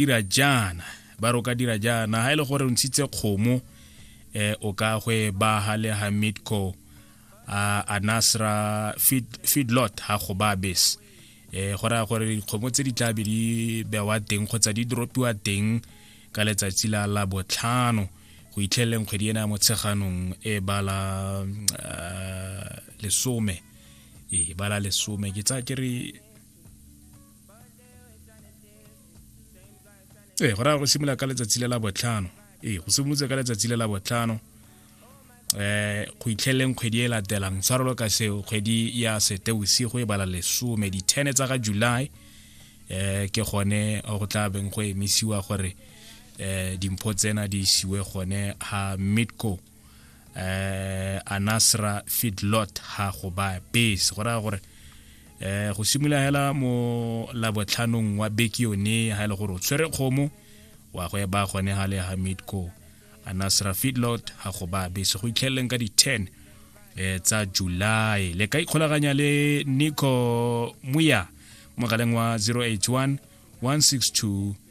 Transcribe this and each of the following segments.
dira jaana ba re o ka dira jaana ha e le gore o ntshitse kgomo eh o ka gwe ba ha le hamidco a anasra feedlot ha go ba bes eh go raya gore dikgomo tse di tla be di bewa teng kgotsa di dropiwa teng ka letsatsi la la botlhano go itlheleleng kgwedi ena ya motsheganong e bala eh, lesome e bala lesome ke tsa ke re ee go raya go simolola ka letsatsi le la botlhano ee go simolotse ka letsatsi le la botlhano eh go itlheleng kgwedi e latelang tshwarelo ka seo kgwedi ya setebosigo e bala lesome di-ten tsa ga july eh ke gone go tla beng go emisiwa gore eh dimpho tsena di isiwe gone ha midco eh anasra fidlot ha go ba base go raya gore eh go simolola hela mo labotlhanong wa beke yone ha e le gore o tshwere kgomo wa go eba gone ha le hamid ko anasra fidlot ha go ba base go itlheleleng ka di-10 eh tsa july le ka ikgolaganya le nico muya mogaleng wa 081 162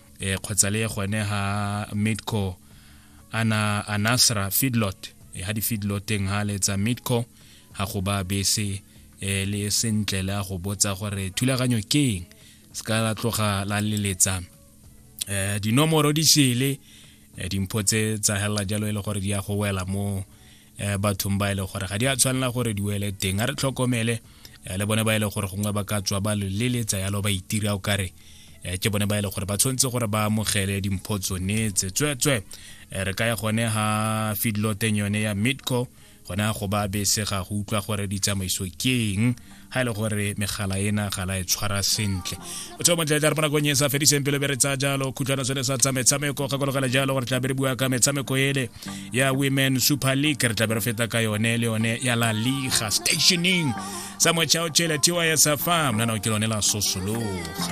eh kgotsa le gone ha midco ana anasra feedlot eh, ha di feedloteng ha le tsa midco ha go ba bese eh le sentle la go botsa gore thulaganyo ke eng se ka la tloga la leletsa eh dinomoro di sele eh, dimpho tse tsa hela jalo e le gore di ya go wela mo um bathong ba e le gore ga di a tshwanela gore di wele teng a re tlhokomele um le bone ba e le gore gongwe ba ka tswa ba loleletsa yalo ba itira o kare um ke bone ba e le gore ba tshwanetse gore ba amogele dimpho tsone tse tswetswe re ka ya gone ga fidloteng yone ya midco gona go ba bese ga go utlwa gore ditsamaiso ke eng ga e le gore megala ena ga la e tshwara sentle o tseo montle tla re bonakong e sa fediseng pelo be re tsaya jalo khutshwana sone sa tsa metshameko gakologela jalo gore tla be re bua ka metshameko ele ya women super league re tla be re feta ka yone le yone ya la liga stationing sa mochao chele tiwa ya sa fam nana o ke lone la sosologa